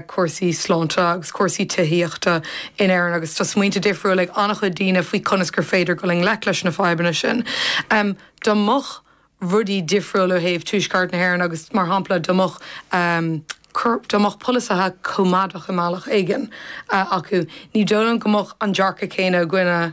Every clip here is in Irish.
cúrsaí sláinte agus cúrsaí tithíochta in Éirinn agus tá smaointe difriúla ag an-chuid daoine faoi conas gur féidir dul i ngleic leis na fadhbanna sin. Dá mbeadh rudaí difriúil ó thaobh Tuaisceart na hÉireann agus, mar shampla, dá mbeadh, dá mbeadh polasaithe coimeádacha i mbealach éigin acu, ní dóigh liom go mbeadh an dearcadh céanna againne.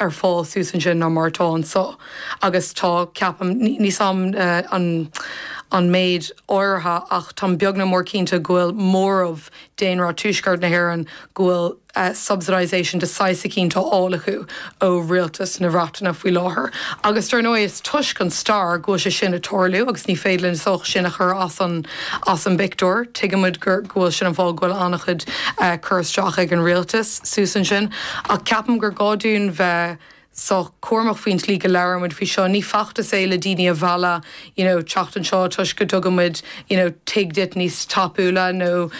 ar fáil thuas ansin ná mar atá anseo agus tá, ceapaim, ní heol dom an méid áirithe ach táim beag ná mór cinnte go bhfuil móramh daonra Tuaisceart na hÉireann go bhfuil subsidisation de saghas eicínt á fháil acu ó rialtas na Breataine faoi láthair agus dar ndóigh is toisc an stair go bhfuil sé sin ag tarlú agus ní féidir linn just sin a chur as an as an bpictiúr. Tuigimid go bhfuil sin an fáth go bhfuil an-chuid cur isteach ag an rialtas thuas ansin. Ach ceapaim gur gá dúinn bheith sách cúramach faoin tslí go labhraímid faoi seo. Ní feachtas é le daoine a mhealladh you know teacht anseo toisc go dtugann muid you know tigh duit níos tapúla nó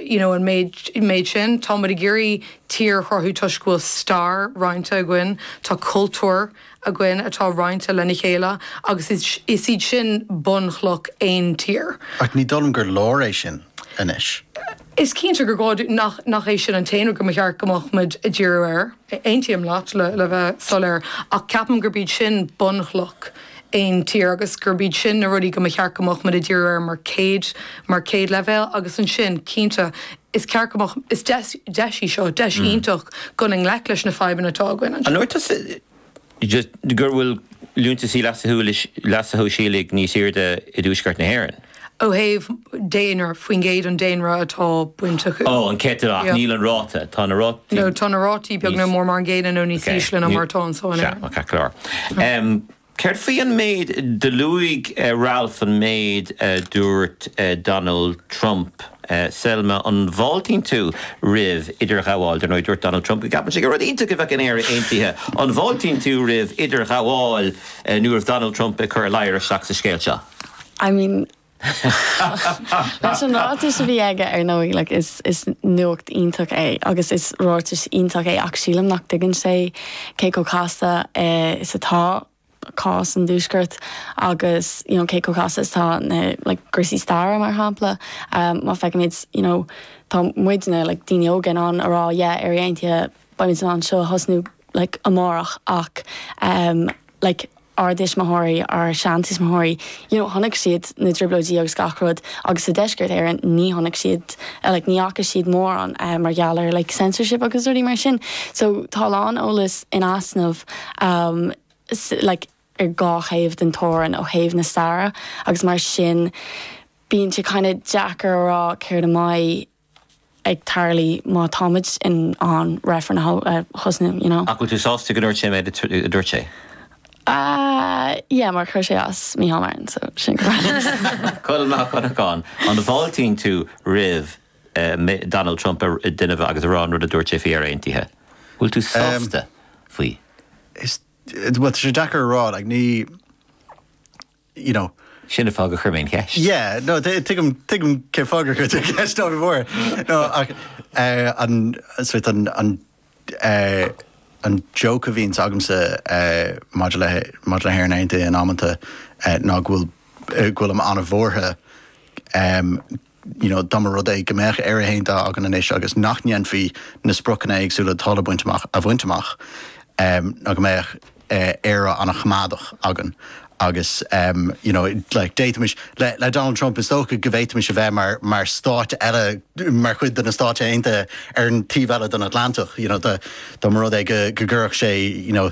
you know an méid sin. Tá muid ag iarraidh tír a chruthú toisc go bhfuil stair roinnte againn, tá cultúr againn atá roinnte lena chéile agus is iad sin bunchloch aon tír. Ach ní dóigh liom gur leor é sin anois. Is cinnte gur gá dúinn nach é sin an t-aon rud go mba cheart go mbeadh muid ag díriú air, aontaím leat, le bheith soiléir, ach ceapaim gurb iad sin bunchloch aon tír agus gurb iad sin na rudaí go mba cheart go mbeadh muid ag díriú air mar chéad, mar chéad leibhéal agus ansin, cinnte, is ceart go mbeadh, is deis í seo, deis iontach dul i ngleic leis na fadhbanna atá againn anseo. An ndúirt tusa go bhfuil liúntaisí leasa shóisialaigh níos airde i dtuaisceart na hÉireann. ó thaobh daonra, faoin gcéad an daonra atá bainteach. Ó, an céatadán, ach níl an ráta. Tá na rátaí. nó tá na rátaí beag ná mór mar an gcéanna nó níos ísle ná mar atá anseo in Éirinn. Sea, ok, ceart go leor. Céard faoi an méid, do luaigh Ralph an méid a dúirt Donald Trump. Selma, an bhfáiltíonn tú roimh idirghabháil? Dar ndóigh, dúirt Donald Trump go gceapann sé gur rud iontach a bheadh in Éire aontaithe. An bhfáiltíonn tú roimh idirghabháil nó roimh Donald Trump ag cur a ladhar isteach sa scéal seo? I mean, leis an ráiteas a bhí aige, ar ndóigh, like is is nuacht iontach é agus is ráiteas iontach é ach sílim nach dtuigeann sé cé chomh casta is atá. cás an Tuaiscirt agus you know cé chomh casta is atá na like gcúinsí staire mar shampla má fheicimid you know tá muidne like daoine óga in ann a rá yeah Éire Aontaithe beimid in ann seo a thosnú like amárach ach like ár dtuismitheoirí ár seantuismitheoirí you know chonaic siad na trioblóidí agus gach rud agus sa deisceart Éireann ní chonaic siad like ní fhaca siad mórán mar gheall ar like censorship agus rudaí mar sin so tá a lán eolas in easnamh um like ar dhá thaobh den teorainn ó thaobh na staire agus mar sin bíonn sé kind of deacair a rá céard a bheidh ag tarlú má táimid in ann reifreann a thosnú, you know. Ach bhfuil tú sásta go ndúirt sé an méid a dúirt sé? Yeah, mar chuir sé as do Micheál Martin, so sin correct. Colm Mac Donnacháin, An bhfáiltíonn tú roimh Donald Trump a dhéanamh agus a rá an rud a dúirt sé faoi Éire Aontaithe? Bhfuil tú sásta faoi? Bhuel, tá sé deacair a rá, like, ní, you know. Sin an fáth gur chuir mé an cheist. Yeah, no, tuigim, tuigim cén fáth gur chuir tú an cheist, ná bí buartha. No, ach eh, an, is ait an, an, eh, an joke a bhíonns agamsa eh, maidir le, maidir le hÉirinn Aontaithe in amanta eh, ná go bhfuil, eh, go bhfuilim an-bhuartha em, you know dá mba rud é go mbeadh Éire aontaithe againn anois agus nach ndéanfaí na spriocanna éagsúla atá le baint amach a bhaint amach em nó go mbeadh eh Éire an-choimeádach againn agus em you know like d'fhéadfaimis le le Donald Trump is dócha go bhféadfaimis a bheith mar mar stát eile mar chuid de na Stáit Aontaithe ar an taobh eile den Atlantach you know dá mba rud é go go gcuirfeadh sé you know